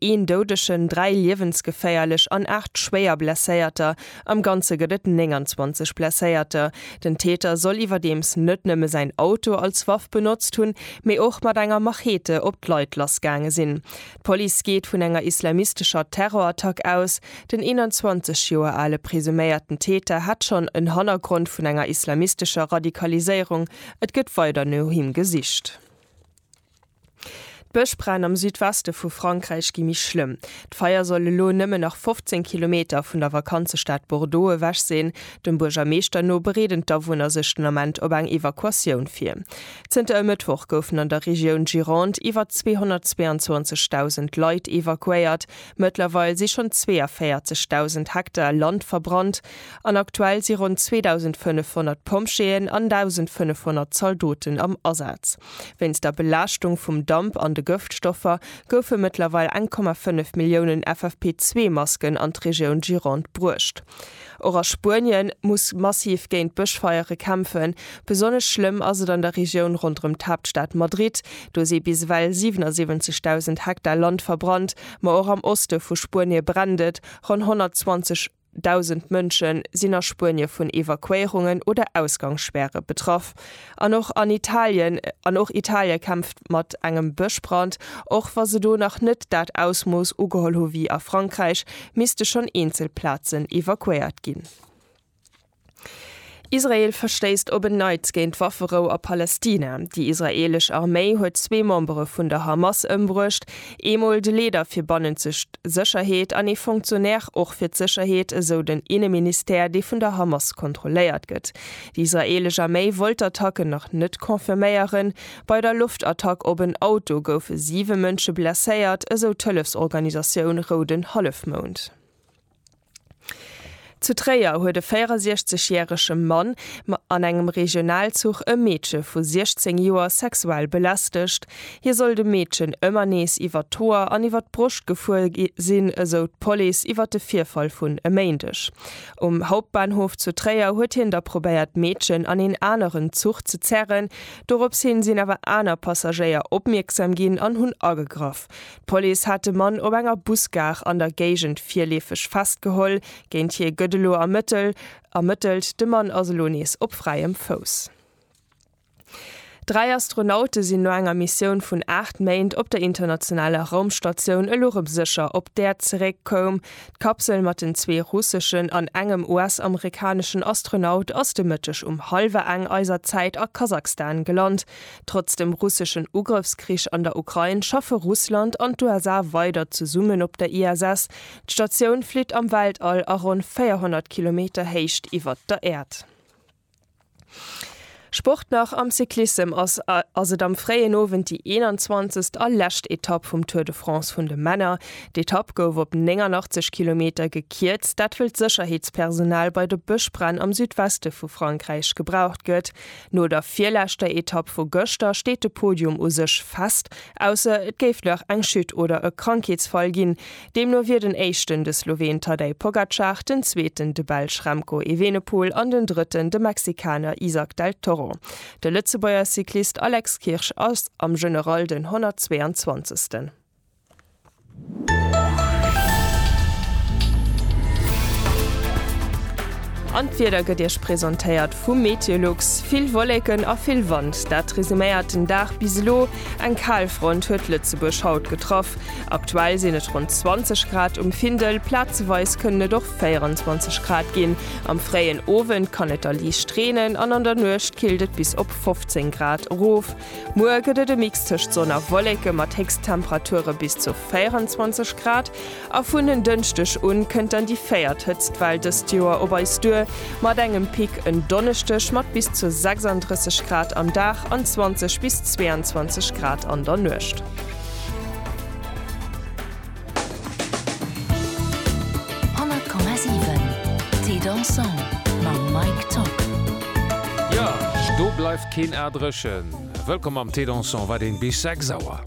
Een Doudegen, dräi liewensgeféierlech an aacht schwéier Blesséierter, am Ganze gëtt et 29 Blesséierter. Den Täter soll iwwerdeems net nëmme säin Auto als Waff benotzt hunn, mee och mat enger Machete op d'Leit lassgaange sinn. D'Police geet vun enger islamistescher Terrorattack aus. Den 21 Joer ale presuméierten Täter hätt schonn en Hannergrond vun enger islamistescher Radikaliséierung, et gëtt weider no him gesicht. D'Bëschbränn am Südweste vu Frankräich gi méi schlëmm. D'Feier soll elo nëmmen nach 15 Kilometer vun der Vakanzestad Bordeaux ewech sinn. Dem Buergermeeschter no bereeden d'Awunner sech den Ament op eng Evakuatioun vir. Zënter e Mëttwoch goufen an der Regioun Gironde iwwer 222.000 Leit evakuéiert. Mëttlerweil si schonn 42.000 Hektar Land verbrannt an aktuell si ronn 2.500 Pompjeeën an 1.500 Zaldoten am Asaz. Wéinst der Belaaschtung vum Damp an de Gëftstoffer goufe mëttlerweil 1,5 Milliounen FFP2-Masken an d'Regioun Gironde bruecht. Och a Spuenien muss massiv géint Bëschfeiere kämpfen. Besonnesch schlëmm ass et an der Regioun ronderëm d'Haaptstad Madrid. Do si bis ewell 77.000 Hektar Land verbrannt. Ma och am Oste vu Spuenie brennt et. Ronn 120. Dausend Mënsche sinn a Spuenie vun Evakuéierungen oder Ausgangsspäre betraff. An och an Italien, an och Italie kämpft mat engem Bëschbrand. Och wa se do nach net dat Ausmooss ugeholl hu wéi a Frankräich, misste schonn eenzel Plazen evakuéiert ginn. Israel verstéisst op en Neits géint d'Wafferou a Palästina. Déi israeelesch Arméi huet zwee Membere vun der Hamas ëmbruecht, eemol de Leeder fir bannenzeg Sécherheet an ee Fonctionnaire och fir d'Sécherheet, esou den Inneministère, dee vun der Hamas kontrolléiert gëtt. Déi israeelesch Arméi wollt d'Attacken nach net confirméieren. Bei der Loftattack op en Auto goufe siwe Mënsche blesséiert, esou d'Hëllefsorganisatioun Rouden Hallefmound. Zu Tréier huet e 64 järege Mann an engem Regionalzuch e Meedche vu 16 Joer sexuell belästegt. Hie soll dem Meedchen ëmmer nees iwwert d'Hoer an iwwert d'Broscht gefuer sinn, esou d'Police iwwert de Virfall vun e Méindeg. Um Hauptbahnhof zu Tréier huet hien da probéiert d'Meedchen an een aneren Zuch ze zerren. Dorops hin sinn awer aner Passagéier opmierksam ginn an hunn agegraff. D'Police hat de Mann op enger Busgare an der Géigend virleefeg festgeholl. Géint hie gëtt elo ermëttelt. De Mann ass elo nees op fräiem Fouss. Dräi Astronaute sinn no enger Missioun vun 8 Méint op der internationaler Raumstatioun elo rëm sécher op d'Äerd zeréck koum. D'Kapsel mat den zwee russeschen an engem US-amerikaneschen Astronaut ass de Mëtteg um hallwer eng eiser Zäit a Kasakhstan gelant. Trotz dem russeschen Ugrëffskrich an der Ukrain schaffe Russland an d'USA weider zesummen op der ISS. D'Statioun flitt am Weltall a ronn 400 Kilometer Héicht iwwert der Äerd. Sport nach, Am Cyclissem ass ass et am fréien Owend déi 21. a lescht Etapp vum Tour de France vun de Männer. D'Etapp gouf op 89 Kilometer gekierzt, dat wëll d'Sécherheetspersonal bei de Bëschbränn am Südweste vu Frankräich gebraucht gëtt. No der virleschter Etapp vu gëschter steet de Podium u sech fest, ausser et géif nach eng Chute oder e Krankheetsfall ginn. Deemno wier den Éischten de Sloween Tadej Pogacar, den Zweeten de Belsch Remco Evenepoel an den Drëtten de Mexikaner Izack del Toro. De Lëtzebuerger Cyclist Alex Kirsch ass am General den 122. An d'Wieder gëtt Iech presentéiert vum Meteolux. Vill Wolleken a vill Wand, dat resuméiert den Dag bis elo. Eng Kalfront huet Lëtzebuerg haut getraff. Aktuell sinn et ronn 20 Grad um Findel, plazeweis kënnen et och 24 Grad ginn. Am fréien Owend kann et da liicht reenen an an der Nuecht killt et bis op 15 Grad erof. Muer gëtt et e Mix tëscht Sonn a Wolleke mat Héchsttemperature bis zu 24 Grad a vun en Dënschdeg un kënnt dann déi véiert Hëtztwell dëst Joer op eis duer, mat engem Pic en Donneschdeg mat bis zu 36 Grad am Dag an 20 bis 22 Grad an der Nuecht. 100,7 Thé dansant mam Mike Tock. Jo, do bleift keen A dréchen. Wëllkomm am Thé dansant, wat een bis 6 Auer.